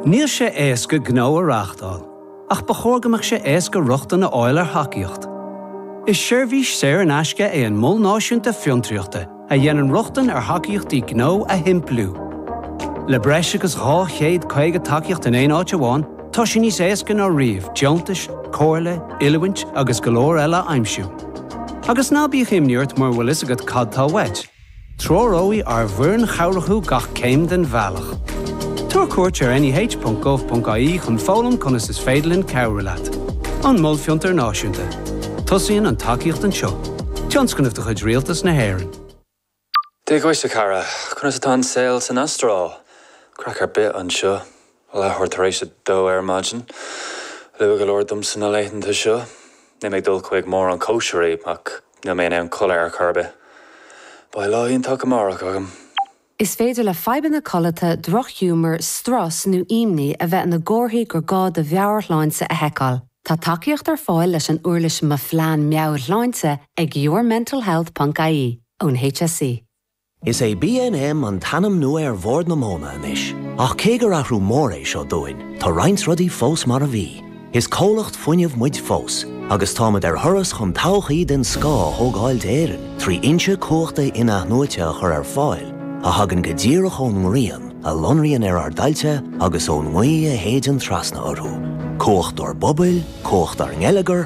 Níl sé éasca gnó a reáchtáil, ach ba chóir go mbeadh sé éasca rochtain a fháil ar thacaíocht. Is seirbhís saor in aisce é an Mol Náisiúnta Fiontraíochta a dhéanann rochtain ar thacaíochtaí gnó a shimpliú. Le breis agus 250 tacaíocht in aon áit amháin, tá sé níos éasca ná riamh deontais, comhairle, oiliúint agus go leor eile a aimsiú. Agus ná bíodh imní ort mura bhfuil fhios agat cad tá uait, Treoróidh ár bhfoireann chabhrach thú gach céim den bhealach. Tabhair cuairt ar neh.gov.ie chun foghlaim conas is féidir linn cabhrú leat. An Mol Fiontair Náisiúnta. Tosaíonn an tacaíocht anseo. Tionscnamh de chuid Rialtas na hÉireann. Dia dhuit a chara! Conas atá an saol san Astráil? Craic ar bith anseo. Leathuair tar éis a dó ar maidin. Luath go leor domsa na laethanta seo. Níl mé ag dul chuig mórán cóisirí, ach níl mé in ann codladh ar chor ar bith. Beidh lá iontach amárach agam! Is féidir le fadhbanna codlata, drochghiúmar, strus nó imní a bheith ina gcomharthaí gur gá do mheabhairshláinte a sheiceáil. Tá tacaíocht ar fáil leis an uirlis Mo Phlean Meabhairshláinte ag yourmentalhealth ponc ie ón HSE. Is é BNM an t-ainm nua ar Bhord na Móna anois, ach cé gur athrú mór é seo dúinn, tá roinnt rudaí fós mar a bhí. Is comhlacht fuinnimh muid fós, agus táimid ar thuras chun todhchaí den scoth a thógáil d'Éirinn trí fhoinse cumhachta in-athnuaite a chur ar fáil a thagann go díreach ón ngrian a lonraíonn ar ár dtailte agus ón ngaoth a shéideann trasna orthu. Cumhacht ár bpobail, cumhacht ár ngeilleagar,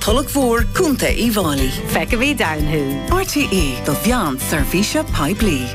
Tulach Mhór, Contae Uíbh Fháilí. Feicfimid ann thú. RTÉ do mheán seirbhíse poiblí.